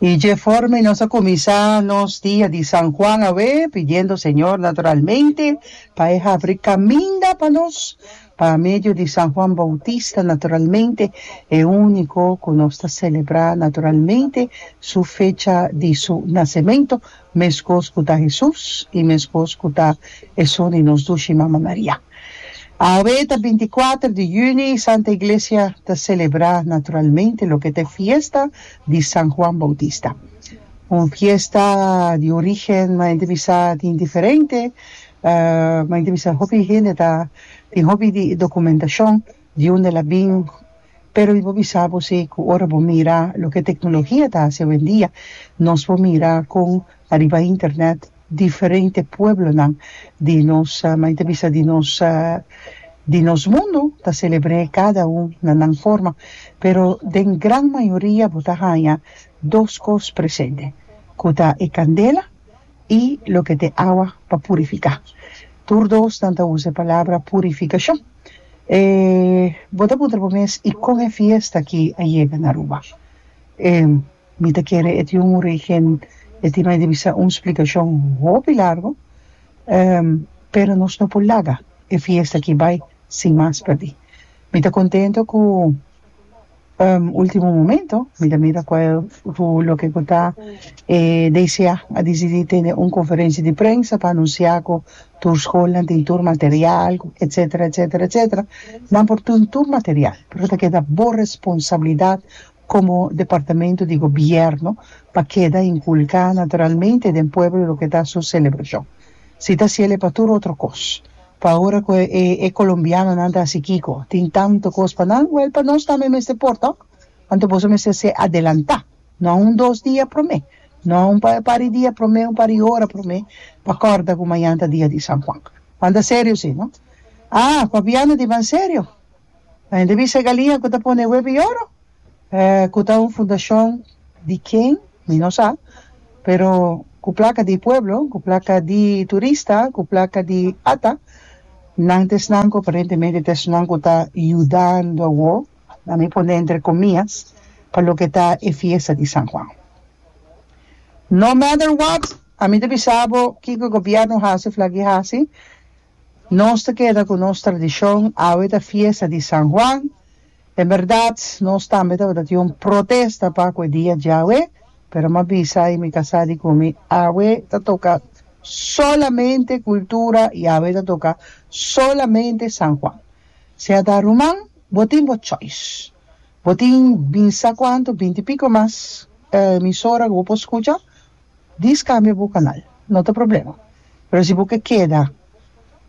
Y dje forma y nos a cuminsa nos dia di San Juan awe, pidiendo Señor naturalmente pa e habri caminda pa nos, pa medio di San Juan Bautista naturalmente, e unico cu nos ta celebra naturalmente su fecha di su nacemento, Mescos cu ta Hesus y mescos cu ta esun di nos dushi Mama Maria. Awe ta binti kuater di juni y Santa Iglesia ta celebra naturalmente loke ta e fiesta di San Juan Bautista. Un fiesta di origen mas ente bisa tin diferente, mas ente bisa hopi hende ta tin hopi di documentacion. Di unda el a bin? Pero mi por bisa bo si cu ora bo mira loke tecnologia ta haci awendia, nos por mira con ariba internet diferente pueblonan di nos, mi ta bisa di nos, di nos mundo ta celebre cada un na nan forma, pero den gran mayoria bo ta haya dos cos presente, cu ta e candela i loke t'e awa pa purifiká. Tur dosnan ta usa e palabra purifikashon. E bo ta puntra bo mes, I kon e fiesta aki a yega na Aruba? E mi ta kere e tin un origen, e tin mai di bisa un splikashon hopi largu, pero nos no por laga e fiesta aki bai sin mas perdí. Mi ta kontento ku ultimo momento mi ta mira cual cu loke cu ta e DCA a dicidi tene un conferencia di prensa pa anuncia cu tur schoolnan tin tur material etcetera etcetera etcetera nan por tin tur material pero ta keda bo responsabilidad como departamento di gobierno pa keda inculca naturalmente den pueblo loke ta su celebracion si ta ciele pa tur otro cos Pa ora cu e colombianonan ta haci kico? Tin tanto cos pa nan? Wel, pa nos tambe mester por to. Anto boso mester ser adelanta. No un dos dia prome. No un par di dia prome, un par di ora prome pa corda cu mañan ta dia di San Juan. Manda serio si, no? Ah, papiando di ban serio? Ta hende bisa e galia ku ta pone web i oro, ku ta un fundashon di ken mi no sa, pero ku plaka di pueblo, ku plaka di turista, ku plaka di ata, nan ta esnan ku aparentemente ta esnan ku ta yudando awo, a mi pone entre komias, pa loke ta e fiesta di San Juan. No matter what, a mi ta bisa bo kiko e gobièrnu hasi, flak i hasi, Nos ta keda ku nos tradishon, awe ta fiesta di San Juan. En bèrdat, nos tambe tabata tin un protesta pa ku e dia djawe, pero m'a bisa i mi ka sa di kumi awe ta toka solamente kultura i awe ta toka solamente San Juan. Si a ta ruman, bo tin bo choice. Bo tin binsa kuantu, binti piko mas, emisora ku bo por skucha. Di scambia bu canal, no ta problema, pero si bo ke keda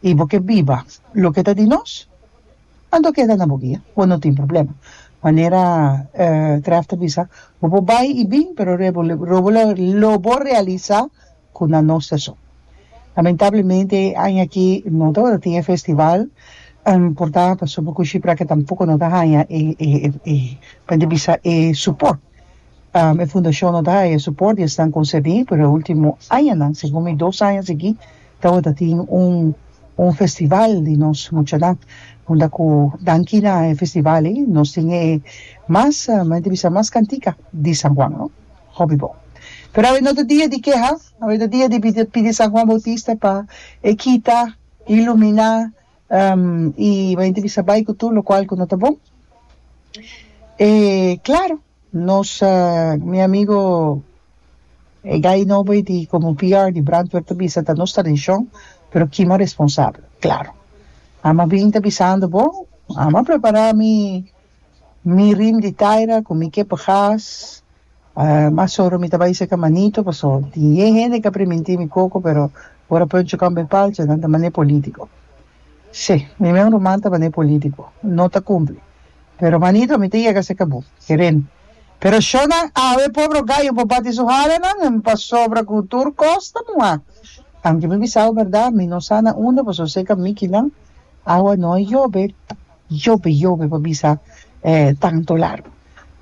y bo ke biba loke ta di nos, anto keda na bo guia, bo no tin problema. Manera Graff ta bisa, bo por bay y bin, pero lo bo realisa cu na nos ta so. Lamentablemente e aña aki no tabata tin e festival porta pasobra cu Shipraca tampoco no ta haya e, e, e, e, pa e bisa, e support E fundashon no ta haya suport di esnan konsebí, pero e último añanan, segun mi dos aña seguí, tabata tin un un festival di nos muchanan, unda ku danki na e festival ei nos tin e mas, mi ta bisa mas kantika di San Juan, no? Hopi bon. Pero awe no ta dia di keha, awe ta dia di pidi San Juan Bautista pa e kita, iluminá, I bo hende bisa, Bai ku tur lokual ku no ta bon. E klaru, nos, mi amigu e gai nobo ei di komo PR di Brantwer ta bisa, ta nos tradishon, pero kima responsabel. Klaru, ama bin ta bisando bo, ama prepará mi mi rim di taira ku mi kepe gas, Mas ora mi ta bai seca manito paso tin yen hende ca priminti mi coco pero ora Pancho camba e palcha nan ta mane politico. Sí, mi men ruman ta mane politico. No ta cumpli. Pero manito mi ta yega seca bo. Keren. Pero sho nan awe pobro gayo pa bati su halanan en pasobra cu tur cos ta muha. Anke mi bisabo berdad mi no sa na unda paso seca mikinan awa no a yobe. Yope yope pa bisa e tanto largo.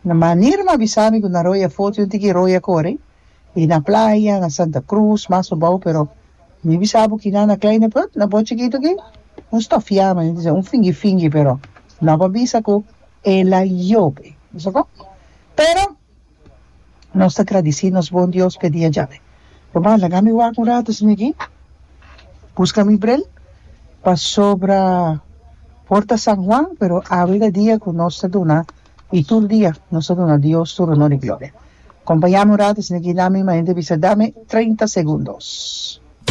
Na manera nan a bisa mi cu nan roya foto yon tin ki roya core y na playa na Santa Cruz mas abao pero mi bisa bo kina na Kleine Put na bo chikito aki un stofiamo nen dise un fingi fingi pero nan pa bisa cu ela yope. Bisoko? Pero. Nos ta gradici nos bon Dios p'e dia djabe. Papá, laga mi wak un rato sin aki. Busca mi bril, pasobra por ta San Juan, pero awe ta dia cu nos ta duna, y tur dia, nos ta duna Dios tur honor y gloria. Compañami un rato sin aki, dami, manente bisa, dami treinta segundos.